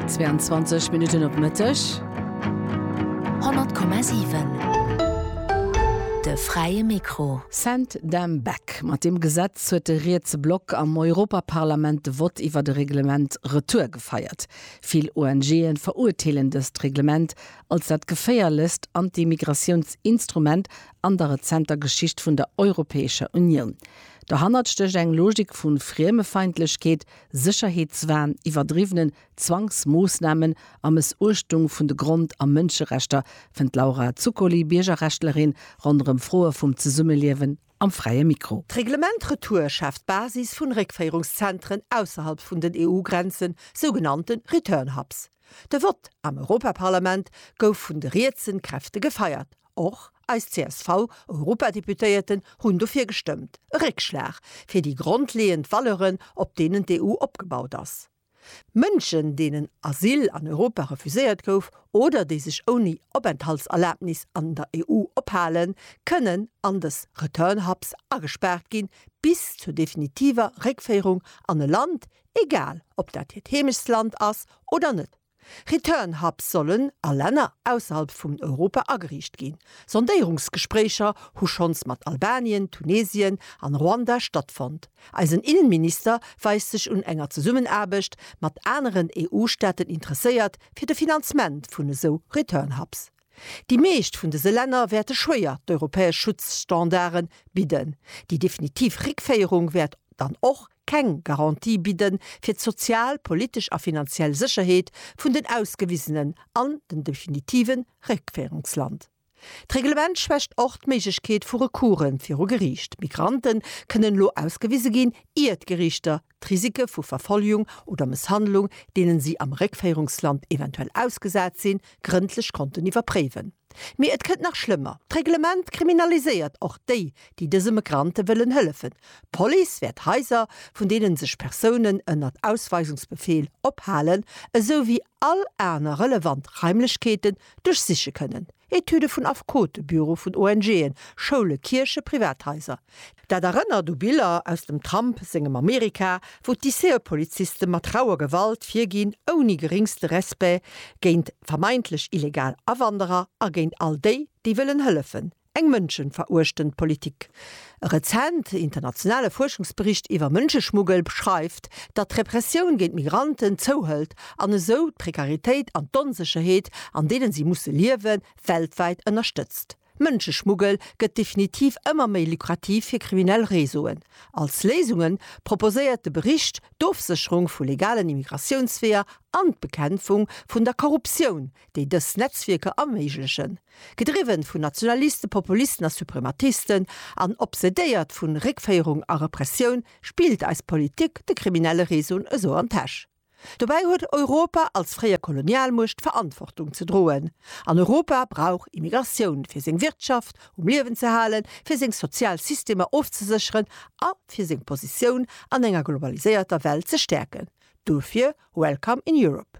22 Minutten op Mëtteg. 100,7 De fräie Mikro. Send them back. Mat deem Gesetz huet de rietse Block am Europaparlament de Vott iwwer e Reglement retour gefeiert. Vill ONGe verurteelen dëst Reglement als dat geféierlechst Anti-Migratiounsinstrument an der rezenter Geschicht vun der Europäescher Unioun. Dohannert stécht eng Logik vu Friemefeindlechkeet, Sécherheetswahn, iwwerdriwwenen Zwangsmoossnamen a Mëssuechtung vun de Grond a Mënscherechter, fënnt d'Laura Zuccoli, Biergerrechtlerin, ronderëm Froe vum Zesummeliewen am Fräie Mikro. D'Reglement Retour schaaft d'Basis vun Réckféierungszentren ausserhalb vun den EU-Grenzen, sougenannten Return Hubs. De Vott am Europaparlament gouf vun de rietsen Kräfte gefeiert. Och eis CSV-Europadeputéierten hunn dofir gestëmmt, e Réckschlag fir déi grondleeënd Valeuren, op deenen d'EU opgebaut ass. Mënschen, deenen Asyl an Europa refuséiert gouf oder déi sech ouni Openthaltserlabnis an der EU ophalen, kënnen an dës Return Hubs agespaart ginn, bis zur definitiver Réckféierung an e Land, egal ob dat hiert Heemechtsland ass oder net. Return Hubs sollen a Länner ausserhalb vum Europa ageriicht ginn. Sondéierungsgespréicher hu schonns mat Albanien, Tunesien an Ruanda stattfonnt. Eisen Innenminister weist sech un enger Zesummenaarbecht mat aneren EU-Staaten interesséiert fir de Finanzement vun esou Return Hubs. Déi meescht vun dëse Länner wäerte schwéier d'europäesch Schutzstandarde bidden. Déi definitiv Réckféierung wäert dann och keng Garantie bidde fir d'sozial, politesch a finanziell Sécherheet vun den Ausgewisenen an dem definitive Réckféierungsland. D'Reglement schwächt och d'Méiglechkeet vu Recourse viru Geriicht. Migranten kënnen elo ausgewise ginn, ier d'Geriichter D'Risike vu Verfolgung oder Mësshandlung, deenen si am Réckféierungsland eventuell ausgesat sinn, grëndlech konnten iwwerpréiwen. Mee et kënnt nach schlëmmer, D'Reglement kriminaliséiert och déi, déi dëse Migrante wëllen hëllefen. D'Police wäert Haiser, vun deenen sech Persounen ënnert Ausweisungsbefeel ophalen, esou wéi, all aner relevant Raimlechkeeten duerchsiche kënnen, Etüde vun Affekote, Büro vun ONGen, Schoule, Kierche, privat Haiser. Dat erënnert u Biller aus dem Trump sengem Amerika, wou d'ICE-Poliziste mat rauer Gewalt virginn, ouni geringste Respect géint vermeintlech illegal Awanderer a géint all déi, déi wëllen hëllefen. Eng mënschenveruechtend Politik. E rezent internationale Fuerschungsbericht iwwer Mënscheschmuggel beschreift, datt d'Repressioun géint Migranten zouhëlt an esou d'Prekaritéit an d'Onsécherheet, an deenen si musse liewen, weltwäit ënnerstëtzt. Mënscheschmuggel gëtt definitiv ëmmer méi lukrativ fir kriminell Réseauen. Als Léisunge proposéiert de Bericht d'Ofsécherung vu legalen Immigratiounsweeër an d'Bekämpfung vun der Korruptioun, déi dës Netzwierker erméiglechen. Gedriwwen vun Nationalisten, Populisten a Suprematisten an obsedéiert vun Réckféierung a Repressioun spillt eis Politik de kriminelle Réseauen esou an d'Täsch. Dobäi huet Europa als fréier Kolonialmuecht Verantwortung ze droen. An Europa brauch Immigratioun, fir seng Wirtschaft um Liewen ze halen, fir seng sozial Systemer ofzesécheren a fir seng Positioun an enger globaliséierter Welt ze stäerken. Dofir Welcome in Europe!